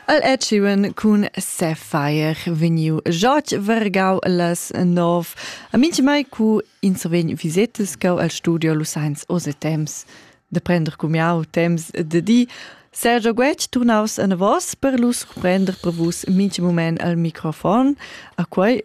El è tschuen cun Sapphire vegniu jotg vergau las nov a mintgmai cu ins vegn visetas cau al studio Lusains oz e temps da prender cumiau temps de di Sergio Guetg turnaus anavos per lu surprender per vus mintg moment al microfon a quei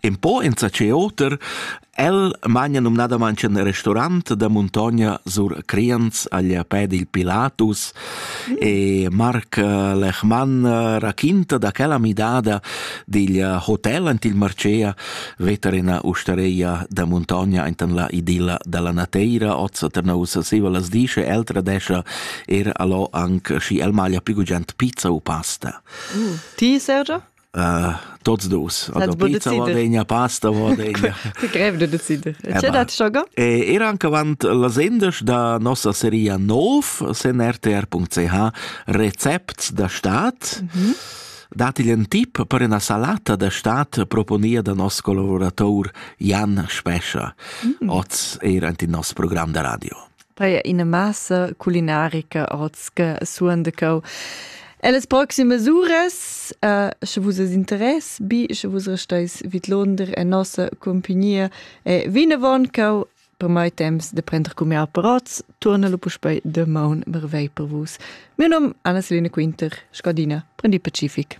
In po enzatgei oter, el magna numnadamein in restaurant da muntogna sur Crians agl pè dil Pilatus e Marc Lechmann raquinta da quella midada digl hotel ant il Marcea veter ina ustareia da muntogna enten la idilla dalla Nateira ozza Ternausa siva las disce el tradescha er allo anc schi el maglia pigugent pizza u pasta. Mm. Ti, Sergio? tots dus vegna pasta grev de decider era anche avant la sendes da nossa seria nov sen rtr.ch recepts da staat mm -hmm. dati un tip per una salata da staat proponia da nos collaborator Jan Spescha mm. oz era anti nos programm da radio Paia ina massa culinarica oz che suon de cau. Ellas proximas uras, uh, sche vus es interess, bi, sche vus restais vid Londra en nossa compagnia, e vinavon cau per mai temps de prender cumià per oz, torna lo puspei de maun mervei per vus. Mio nom Anna-Selina Quinter, Scadina, prendi pacific.